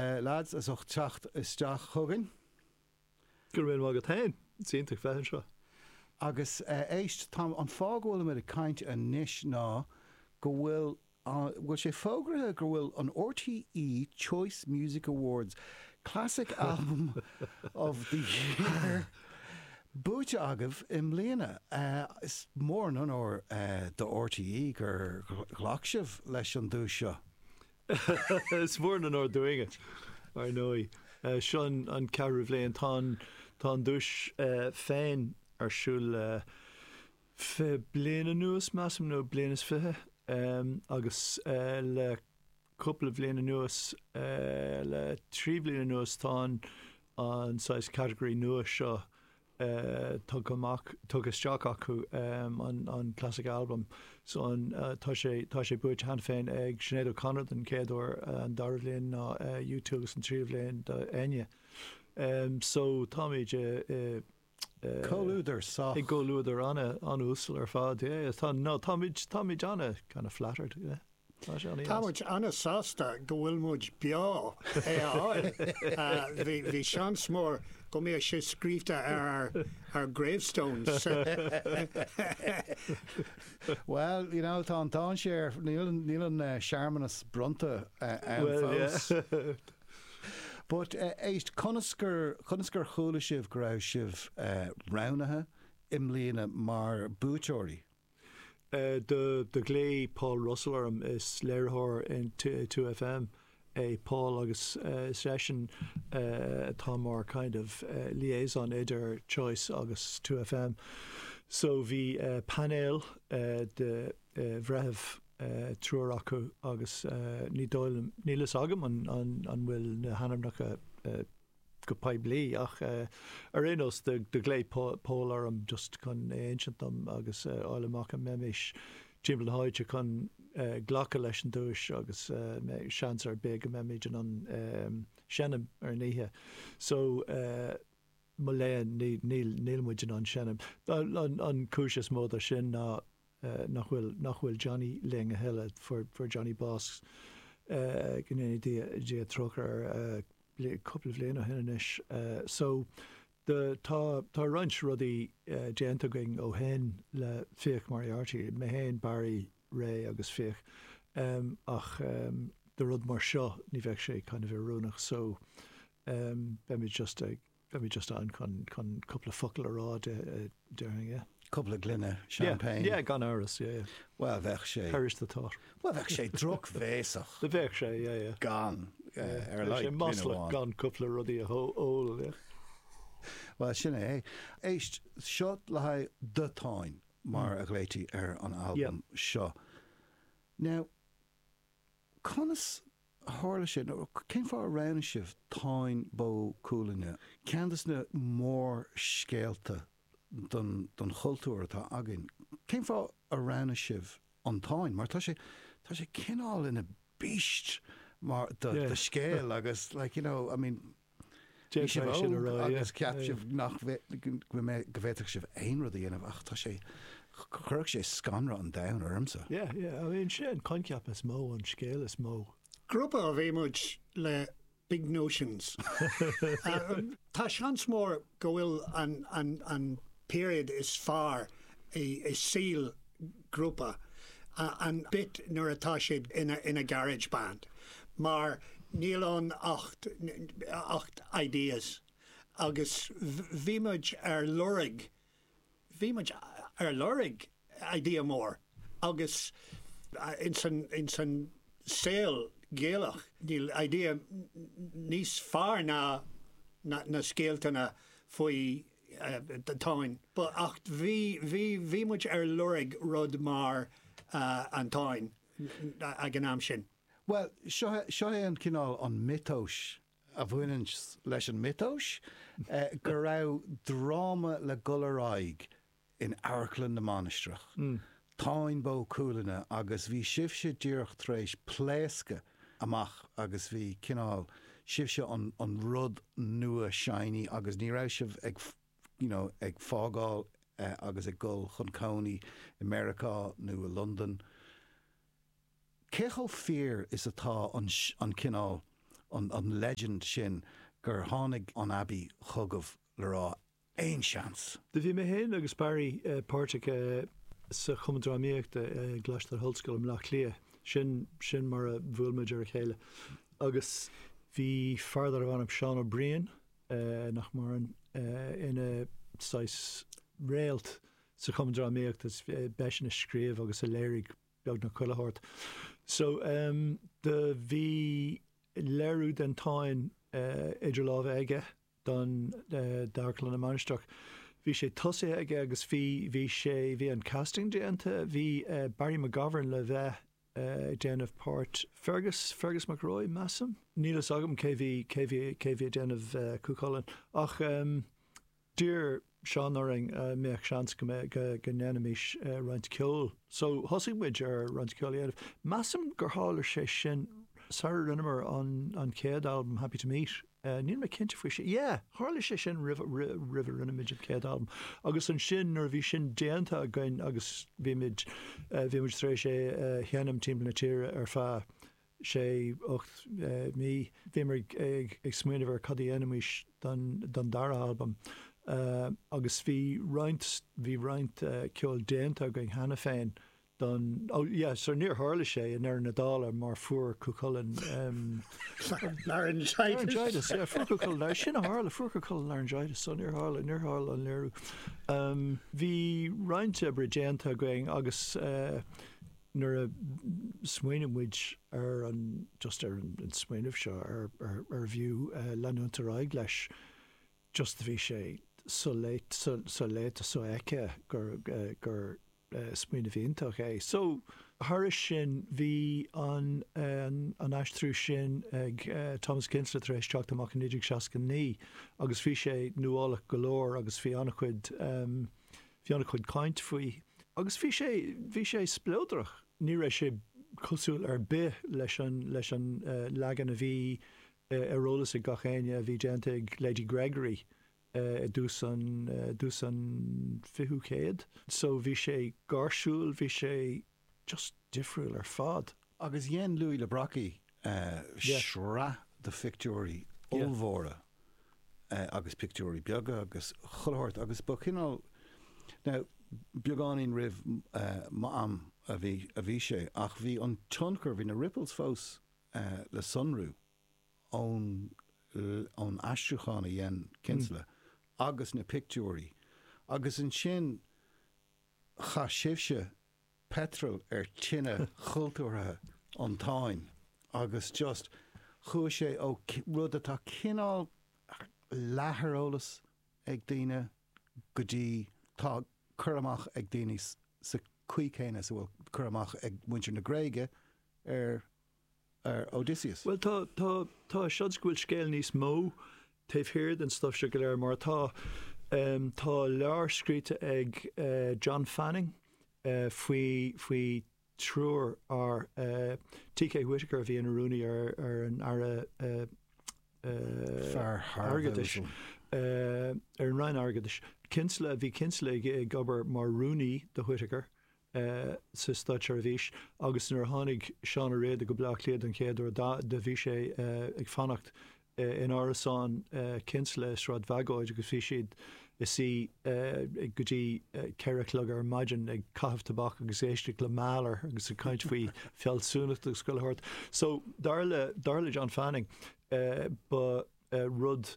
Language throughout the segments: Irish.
Lads, as ucht teacht isteach chugainn. Go raibh míle maith agat féin. Is iontach bheith anseo. Agus éist, tá an fáth go bhfuilimid ag caint anois ná go bhfuil, bhfuil sé fógraithe go bhfuil an RTÉ Choice Music Awards Classic Album of the Year buaite agaibh i mbliana. Is mór an onóir do RTÉ gur ghlac sibh leis an duais seo. Is mór an onóir dúinne, ar ndóigh. Seo an ceathrú bhliain. Tá an duais féin ar siúl le fiche bliain anuas, measaim, nó bliain is fiche, agus le cúpla bhliain anuas, le trí bhliain anuas, tá an saghas category nua seo tugtha amach, tugtha isteach acu an Classic Album so an tá sé, tá sé buaite cheana féin ag Sinéad O'Connor den chéad uair, an dara bhliain ná U2 agus an tríú bhliain do Enya. So táimid i, i, i. Comhluadar sách. I gcomhluadar ana, ana-uasal ar fad, yeah, yeah. Tá, no, táimid, táimid ana kind of flattered, yeah. Tá muid an-sásta go bhfuil muid beo le é a fháil. Bhí seans mór go mbeadh sé scríobhta ar ár gravestones. Bhuel, you know, tá an dainséar, níl an searmanas bronnta ann fós. But éist, conas gur chuala sibh go raibh sibh roghnaithe i mbliana mar buaiteoirí? Do ghlaoigh Paul Russell orm, is léiritheoir in 2FM é Paul agus is eisean atá mar kind of liaison idir Choice agus 2FM. So bhí painéal de bhreithimh, triúr acu agus ní dóigh liom, níl fhios agam an bhfuil na hainmneacha go poiblí ach ar aon nós do ghlaoigh Paul orm just chun é a insint dom agus a fháil amach an mbeimís timpeall na háite chun glacadh leis an duais agus seans ar bith go mbeimid in ann seinm ar an oíche so mo léan níl muid in ann seinm. An cúis is mó do sin ná eh, nach bhfuil, nach bhfuil Johnny linn a thuilleadh, fuair, fuair Johnny bás, eh, go ndéana Dia, Dia trócaire air, eh, bli, cúpla bhliain ó shin anois. Eh, so, do, tá, tá roinnt rudaí, eh, déanta againn ó shin le Fiach Moriarty, mé fhéin, Barry, Ray agus Fiach, em, ach, em, do rud mar seo, ní bheadh sé kind of oiriúnach so, em, beimid just ag. Beidh mé just ann chun cúpla focal a rá déarfainn, yeah. Cúpla gloine champagne. Yeah, yeah, gan amhras, yeah, yeah. Well, bheadh sé. Perish the thought. Well, bheadh sé drochbhéasach. Bheadh sé, yeah, yeah. Gan, yeah, ar a laghad gloine amháin. Bheadh sé maslach gan cúpla rudaí a ól, yeah. Well, sin é. Éist, seo le haghaidh The Táin, mar a ghlaotaí ar an albam seo. Now, conas. Tharla sin. Cén fáth ar roghnaigh sibh Táin Bó Cuailgne? Ceann de na mórscéalta don chultúr atá againn. Cén fáth ar roghnaigh sibh an Táin? Mar tá sé, tá sé cineál ina beast mar, de scéal agus like, you know, I mean. Bhí sibh óg agus cheap sibh nach, go bhféadfadh sibh aon rud a dhéanamh ach tá sé, chuirfeadh sé scanradh an domhain ormsa. Yeah, yeah, I mean, sé an coincheap is mó, an scéal is mó. Grúpa ab ea muid le big notions. Tá seans mór go bhfuil an period is fearr i saol grúpa an bit nuair atá siad ina garage band mar níl ann ach, ach ideas agus bhí muid ar lorg bhí muid ar lorg idea mór agus ins an saol Gaelach níl idea níos fearr ná na scéaltanna faoi Táin but ach bhí muid ar lorg rud mar an Táin ag an am sin. Bhuel, seo é an cineál an miotas a bhaineanns leis, an miotas, go raibh dráma le dhul ar aghaidh in Amharclann na Mainistreach, Táin Bó Cuailgne agus bhí sibhse díreach tar éis pléascadh amach agus bhí cineál, sibhse an rud nua shiny agus ní raibh sibh ag you know ag fágáil agus ag dhul chun cónaí i Meiriceá nó i Londain. cé chomh fíor is atá an, an cineál, an, an legend sin gur tháinig an Abbey chugaibh le rá, aon chance? Do bhí mé féin agus Barry páirteach sa Chumann Drámaíochta i gColáiste na hOllscoile i mBleá Cliath, sin, sin mar a bhuail muid lena chéile agus bhí fear darbh ainm Seán Ó Briain, nach maireann, ina saghas réalt sa Chumann Drámaíochta, b'eisean a scríobh agus a léirigh, beag eile a thabhairt. So ehm do bhí léiriú den Táin idir lámha aige d'Amharclann na Mainistreach. Bhí sé tosaithe aige agus bhí bhí sé bhí an casting déanta. Bhí Barry McGovern le bheith ag déanamh páirt Fergus Fergus Mac Róich measaim. Níl fhios agam cé bhí cé bhí cé bhí ag déanamh Cú Chulainn. Ach ehm D'iarr Seán orainn an mbeadh seans go mbeadh, go ndéanfaimís roinnt ceoil. So thosaigh muid ar roinnt ceoil a dhéanamh. Measaim gur tharla sé sin sara rinneamar an, an chéad albam Happy To Meet. Níl mé cinnte faoi sin. Yeah, tharla sé sin roimh, roimh a rinneamid an chéad albam. Agus ansin nuair a bhí sin déanta againn agus bhímid, bhímid tar éis é a sheinm timpeall na tíre ar feadh sé ocht mí. Bhíomar ag smaoineamh ar cad a dhéanfaimís don dara halbam agus bhí roinnt, bhí roinnt ceoil déanta againn cheana féin don, ó yeah, so níor tharla sé i ndeireadh na dála mar fuair Cú Chulainn laryngitis, yeah, fuair Cú Chulainn, sin a tharla, fuair Cú Chulainn laryngitis so níor tharla, níor tharla an léiriú. Bhí roinnt oibre déanta againn agus nuair a smaoinimid ar an, just ar an smaoineamh seo, ar, ar, arbh fhiú leanúint ar aghaidh leis just bhí sé so-léite, so, so-léite, so-fheicthe gur, gur smaoineamh iontach é. So, thairis sin, bhí an, an aistriú sin ag Thomas Kinsella tar éis teacht amach i 1969 agus bhí sé nuálach go leor agus bhí an-chuid, Bhí ana chuid caint faoi agus bhí sé, bhí sé spleodrach. Ní raibh sé cosúil ar bith leis an, leis an leagan a bhí ar eolas ag gach éinne a bhí déanta ag Lady Gregory i dtús an, dtús an fichiú chéad. So bhí sé gáirsiúil, bhí sé just difriúil ar fad. Agus dhein Louis le Brocquy sraith de phictiúirí ollmhóra agus pictiúirí beaga agus chuile shórt agus ba chineál, now beagáinín roimh m'am a bhí sé ach bhí an tionchar, bhí na ripples fós le sonrú ón aistriúchán a dhein Kinsella agus na pictiúirí agus ansin chaith sibhse petrol ar tine chultúrtha an Táin agus just chuaigh sé ó rud atá cineál leath ar eolas ag daoine go dtí tá cur amach ag daoine sa chaoi céanna is a bhfuil cur amach ag muintir na Gréige ar ar Odysseus. Bhuel, tá, tá, tá seans go bhfuil scéal níos mó taobh thiar den stuif seo go léir mar atá, em, tá leabhar scríte ag, eh, John Fanning, eh, faoi, faoi triúr fear, eh, T. K. Whitaker a bhí ina rúnaí ar, ar an Aire, eh, eh, Fear thar a bheith Airgeadais, uasal. eh, ar an Roinn Airgeadais. Kinsella, bhí Kinsella ag, ag obair mar rúnaí do Whitaker, sa Státseirbhís agus nuair a tháinig Seán O Riada go Bleá Cliath don chéad uair do bhí sé ag fanacht in árasán Kinsella i Sráid Bhagóid agus bhí siad ina suí go dtí ceithre a chlog ar maidin ag caitheamh tobac agus ag éisteacht le Mahler agus ag caint faoi fhealsúnacht agus chuile shórt. So dar le John Fanning ba rud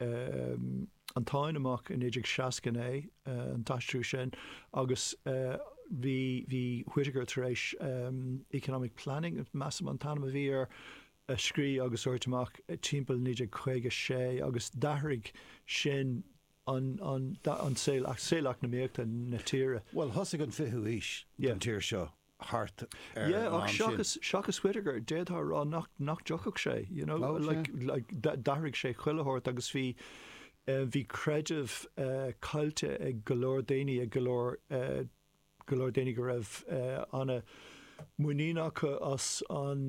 eh, An Táin amach i 1969, eh, an t-aistriú sin agus, eh, bhí, bhí Whitaker tar éis em, Economic Planning measaim an t-ainm a bhí air a scrí agus a thabhairt amach timpeall 1956 agus d'athraigh sin an, an, an saol, saol eacnamaíochta na tíre. Bhuel thosaigh an fichiú haois Yeah. don tír seo thart ar an am sin. Yeah, ach seachas Whitaker, d'fhéadfá a rá nach dtiocfadh sé, you know, like d'athraigh sé chuile shórt agus bhí, bhí creideamh caillte ag go leor daoine, ag go leor, go leor daoine go raibh an-muinín acu as an,